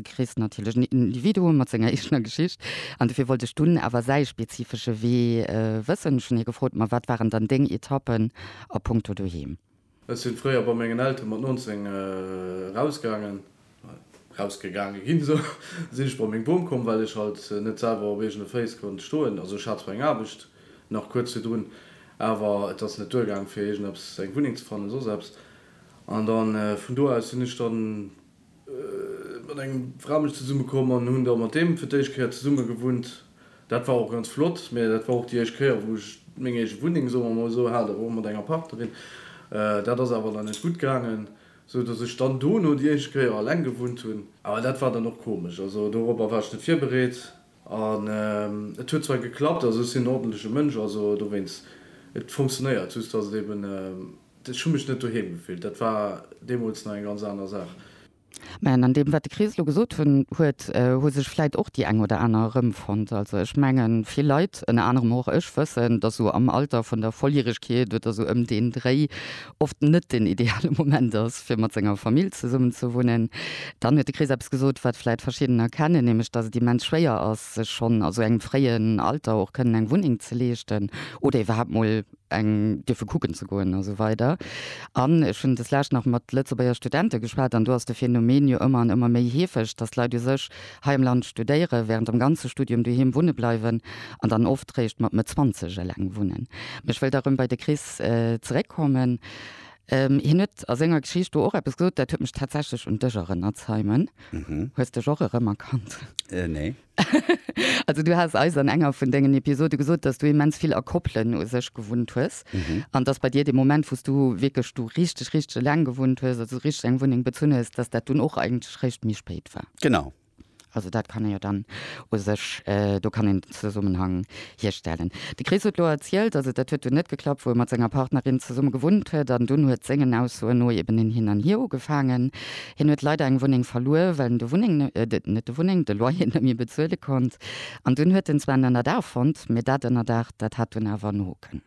Chris natierlech en Individuum mat senger eegener Geschicht an dofir wollt ech dunn awer säi spezifesche Wee wëssen. Ech hunn hie gefrot, Ma wat waren dann deng Etappen a Punkto Doheem? Ech sinn fréier bei mengen Elteren mat 19 erausgaangen, erausgegaange ginn, esou sinn ech bei meng Bom komm, well ech halt net selwer op eegene Féiss konnt stoen. Also ech hat zwar eng Aarbecht nach kuerz virdrun, awer et ass net duergaangen fir iergendeppes, eng Wunneng ze fannen, soss eppes. An da vun do aus sinn ech dann. Mat engem Fra bin ech zesummekomm an hunn da mat deem fir d'éischt Kéier zesumme gewunnt. Dat war och ganz flott, mä dat war och déi éischt Kéier, wou ech meng eege Wunneng, soe mer emol esou, hat, awer och mat enger Partnerin. Dat ass awer dann net gutt gaangen, esou dass ech dann dono déi éischt Kéier eleng gewunnt hunn. Awer dat war dann och komesch, also doropper war ech net virbereet. An et huet zwar geklappt, also ech sinn en ordentleche Mënsch, also dowéinst, et funktionéiert, just datt et eben, ech hu mech net doheem gefillt, dat war deemools nach eng ganz aner Saach. Mä an deem, wat de Chris elo gesot hunn, huet, hu sech vläit och déi eng oder aner erëmfonnt. Also ech mengen, vill Leit, ënner anerem och ech, wëssen, datt esou am Alter vun der Volljäregkeet oder esou ëm deen Dréi oft net den ideale Moment ass, fir mat senger Famill zesummenzewunnen. Dann huet de Chris eppes gesot, wat vläit verschiddener kennen, nämlech dass et immens schwéier ass, sech schonn a sou engem fréien Alter och kënnen eng Wunneng ze leeschten oder iwwerhaapt mol eng dierfe kucken ze goen a sou weider. An ech hunn deslescht nach mat Lëtzebuerger Studente geschwat an do ass de Phänomen jo ëmmer an ëmmer méi heefeg, dass d'Leit u sech Hei am Land studéieren, während dem ganze Studium doheem wunne bleiwen an dann oft réischt mat Mëtt Zwanzeg eleng wunnen. Mee ech wëll da rëm bei de Chris zeréckkommen. Hien huet a senger Geschicht do och eppes gesot, dat huet mech tatsächlech un dech erënnert, Simon. Hues dech och erëmerkannt? Nee. Also du has eis an enger vun dengen Episode gesot, dass du immens vill a Koppelen u sech gewunnt hues. an dass bei dir de Moment wou's du wierklech du richteg richteg eleng gewunnt hues, also richteg eng Wunneng bezunn hues, dass dat dunn och eigentlech réischt méi spéit war. Genau. Also dat kann ee jo dann u sech, do kann een den Zesummenhang hierstellen. De Chris huet elo erzielt, also dat huet dunn net geklappt, wou e mat senger Partnerin zesumme gewunnt huet an dunn huet sengen Aussoen no eben en Hin an Hier ugefaangen. Hien huet leider eng Wunneng verluer, well en de Wunneng, net de Wunneng, de Loyer net méi bezuele konnt an dunn huet en zwar en Ënnerdaach fonnt, mee dat Ënnerdaach, dat hat dunn awer no. packen.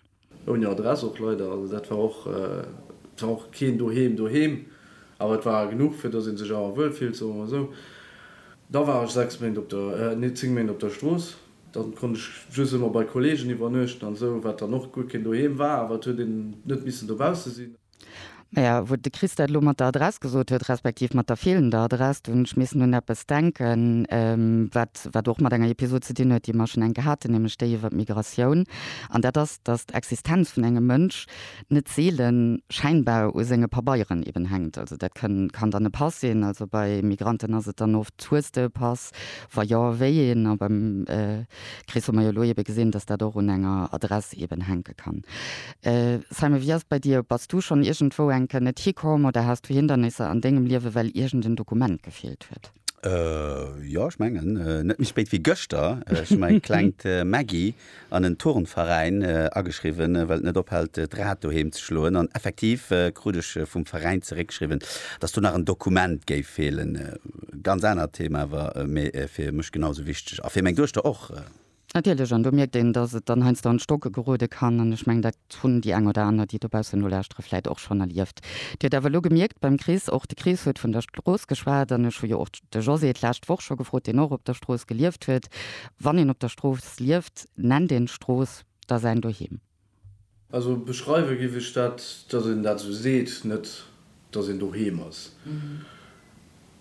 Ouni Adress och leider, also dat war och, et war och keen doheem doheem, awer et war genuch fir dass een sech awer wuel fillt, soe mer mol esou. Da war ech 6 Méint op der, nee 10 Méint op der Strooss, da konnt ech just ëmmer bei Kollegen iwwernuechten an esou, wat dann och guer keen doheem war, awer et huet een net missen dobausse sinn. Maja, wou de Chris dat elo mat der Adress gesot huet, respektiv mat der feelender Adress, do hunn ech missen un eppes denken, wat, wat och mat enger Episod ze dinn huet, déi mer schonn enk gehat hunn, nämlech déi iwwert d'Migratioun. An dat ass, dass d'Existenz vun engem Mënsch net seele schäinbar u senge Pabeieren eben hänkt. Also dat kënn, kann dann e Pass sinn, also bei Migranten ass et dann oft, Hues de e Pass? Wa jo, wéi een? A beim Chris hu mer jo elo ebe gesinn, dass dat och un enger Adress eben hänke kann. Simon, wéi ass et bei dir? Bass du schonn iergendwou eng Kéier net hikomm oder has du Hindernisser an dengem Liewe well iergend en Dokument gefeelt huet? Jo, ech mengen net méi spéit wéi gëschter. Ech hu mäi klengt Maggy an en Turnveräin ageschriwwen, well et net ophält d'Rad doheem ze schloen. An effektiv krut ech vum Veräin zeréckgeschriwwen, datt do nach en Dokument géif feelen. Ganz anert Thema awer, mee fir mech genau sou wichteg a fir meng Duechter och. Natierlech, an do mierkt een, dass et dann heiansdo an d'Stocke gerode kann. An ech mengen, dat hunn déi eng oder aner, déi dobaussen nolauschtere, vläicht och schonn erlieft. Dir hutt awer elo gemierkt beim Chris, och de Chris huet vun der Strooss geschwat, an ech hu jo och de José d'lescht Woch scho gefrot, deen och op der Strooss gelieft huet, wann een op der Strooss lieft, nennt een d'Strooss da säin Doheem. Also beschreiwe giff ech dat, datt een dat esou seet, net datt een doheem ass.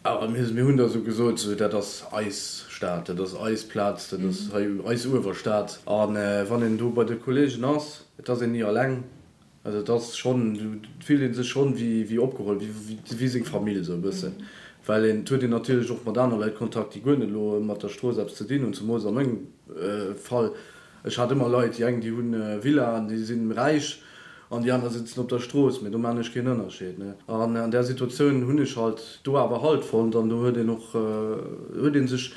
Awer mir mir hunn da esou gesot, esou dat ass eis Stad, dat ass eis Plaz, dat ass hei eis Uewerstad. A wann een do bei de Kolleegen ass, et ass een ni alleng. Also et ass schonn, do fillt ee sech schonn wéi wéi opgeholl, wéi wéi seng Famill esou e bëssen. Well een et huet een natierlech och mat aner Leit Kontakt, déi guer net elo mat der Strooss eppes ze dinn hunn, zemools a mengem Fall. Ech hat ëmmer Leit, déi eng déi hunn Villaen, déi sinn räich an déi aner sitzen op der Strooss, mee do maan ech keen Ënnerscheed, ne. An an där Situatioun hunn ech halt do awer Halt fonnt an do huet een och, huet een sech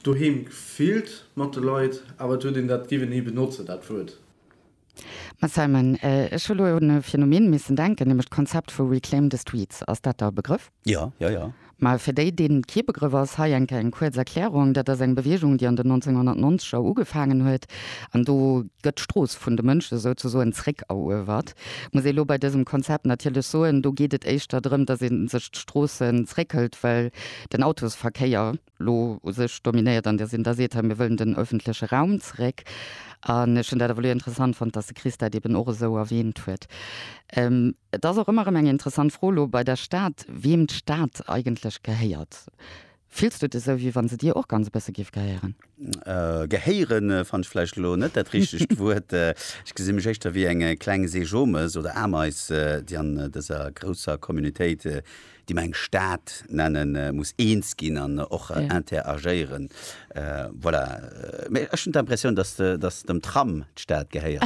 doheem gefillt mat de Leit, awer et huet een dat, géif een hei benotzen dat Wuert? Mme Simon, Ech hu lo un e Phänomen missen denken, nämlech d'Konzept vu Reclaim the Streets. Ass dat der e Begrëff? Jo, jo, jo. Mä fir déi, deenen et kee Begrëff ass, hei enke eng kuerz Erklärung, Dat ass eng Bewegung, déi an den 1990 er ugefaangen huet. An do gëtt d'Strooss vun de Mënsche souzesoen zréckeruewert. Muss ee lo bei dësem Konzept natierlech soen, do geet et éischter drëm, dass ee sech d'Stroossen zréckhëlt, well den Autosverkéier elo u sech dominéiert an Dir sinn da seet, hei mir wëllen den öffentleche Raum zeréck. An ech hunn dat ewell interessant fonnt, datt de Chris dat eben och esou erwähnt huet. Et ass och ëmmer erëm eng interessant Fro elo bei der Stad, wiem d'Stad eigentlech gehéiert. Fills du et esou, wéi wa se dir och ganz e bësse géif gehéieren? Gehéiere fannt ech vläicht elo net dat richtegt Wuert. Ech gesi mech éischter wéi e klenge Seejomes oder Ameis, déi an dëser grousser Communautéit déi mer eng Stad nennen, muss eens ginn an och interagéieren. Voilà. Mee ech hunn d'Impressioun, datt dem Tram d'Stad gehéiert.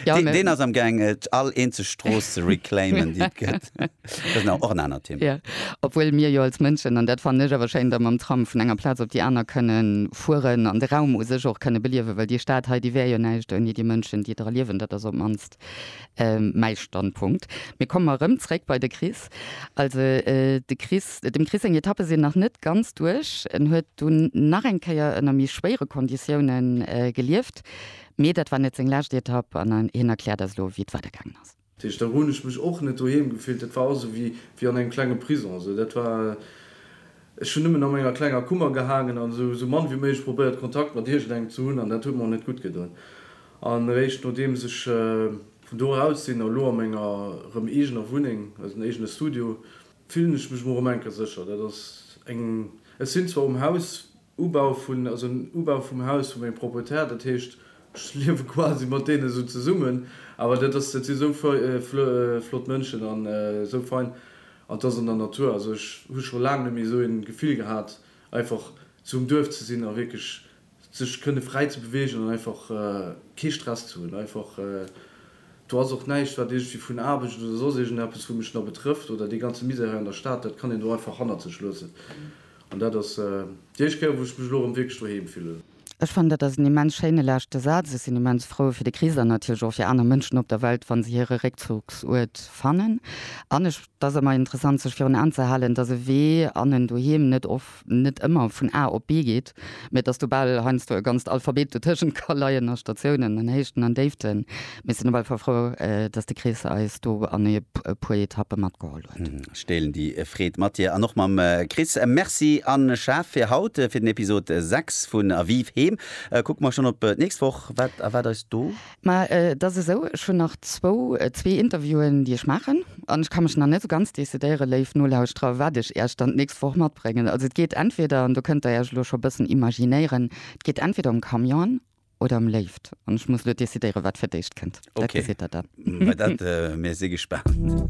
Deen ass amgaang, all eenzeg Strooss ze reclaimen, déi et gëtt. Dat ass och en anert Thema. Obwuel mir jo als Mënschen, an dat fannen ech awer schéin, da mam Tram vun enger Plaz op déi aner kënne fueren an de Raum u sech och kënne beliewen, well déi Stad hei, déi wär jo näischt ouni déi Mënschen, déi dra liewen. Dat ass op d'mannst Mäi Standpunkt. Mir kommen erëm zréck bei de Chris. Also de Chris, dem Chris seng Etappe sinn nach net ganz duerch. En huet dunn nach eng Kéier ënner méi schwéiere Konditioune gelieft, mee dat war net seng lescht Etapp an hien erkläert eis elo, wéi et weider gaangen ass. Dat heescht, do hunn ech mech och net doheem gefillt. Dat war also wéi an engem klenge Prisong. Also dat war Ech hunn nëmmen a menger klenger Kummer gehaangen an esou mann wéi méiglech probéiert Kontakt mat iergendengem ze hunn an dat huet mer net gutt gedoen. An eréischt nodeems ech vun do eraus sinn a lo a menger erëm eegener Wunneng, also en eegene Studio, fillen ech mech erëm eng Kéier sécher. Dat ass eng, ech sinn zwar um Haus Ubau vun, also en Ubau vum Haus vu mengem Proprietär, dat heescht Ech liewe quasi mat deene sou zesummen, awer dat ass, dat si sou flott Mënschen an sou fein an et ass an der Natur. Also ech hu scho laang net méi sou een Gefill gehat einfach sou um Duerf ze sinn a wierklech sech kënne fräi ze beweegen an einfach kee Stress ze hunn. Einfach do ass och näischt wat iergendwéi vun Aarbecht oder soss iergendeppes wou mech nach betrëfft oder dee ganze Misär hei an der Stad, dat kann een do einfach hannert sech loossen an dat ass déi éischt Kéier wou ech mech elo erëm wierklech doheem fillen. Ech fannen, dat ass en immens schéine leschte Saz. Ech sinn immens frou fir de Chris an natierlech och fir aner Mënschen op der Welt, wa se hire Réckzugsuert fannen. An ech, et ass ëmmer interessant, sech virun Aen ze halen, dass e Wee an en Doheem net of, net ëmmer vun A op B geet, mä dass do bal heiansdo e ganzt Alphabet dotëschent ka leien a Statiounen an Héichten an Déiften. Mir sinn op alle Fall frou, dass de Chris eis do an e puer Etappe matgeholl huet. Ech deelen déi Freed mat dir an och mam Chris. Merci a Chef fir haut, fir den Episod 6 vun A Vive Heem. Kucke mer schonn op d'nächst Woch. Wat erwaart eis do? Ma et ass esou, ech hunn nach zwou, zwee Interviewen, déi ech maachen. An ech ka mech nach net esou ganz decidéieren, léif Nolauschterer, wat ech iech dann d'nächst Woch matbréngen. Also et geet entweder, an do kënnt der iech elo scho e bëssen imaginéieren, et geet entweder ëm Camione, oder am Léift. An ech muss elo decidéieren, wat fir d'éischt kënnt. Dat gesitt Der dann. Okay, mä dat, mir si gespaant.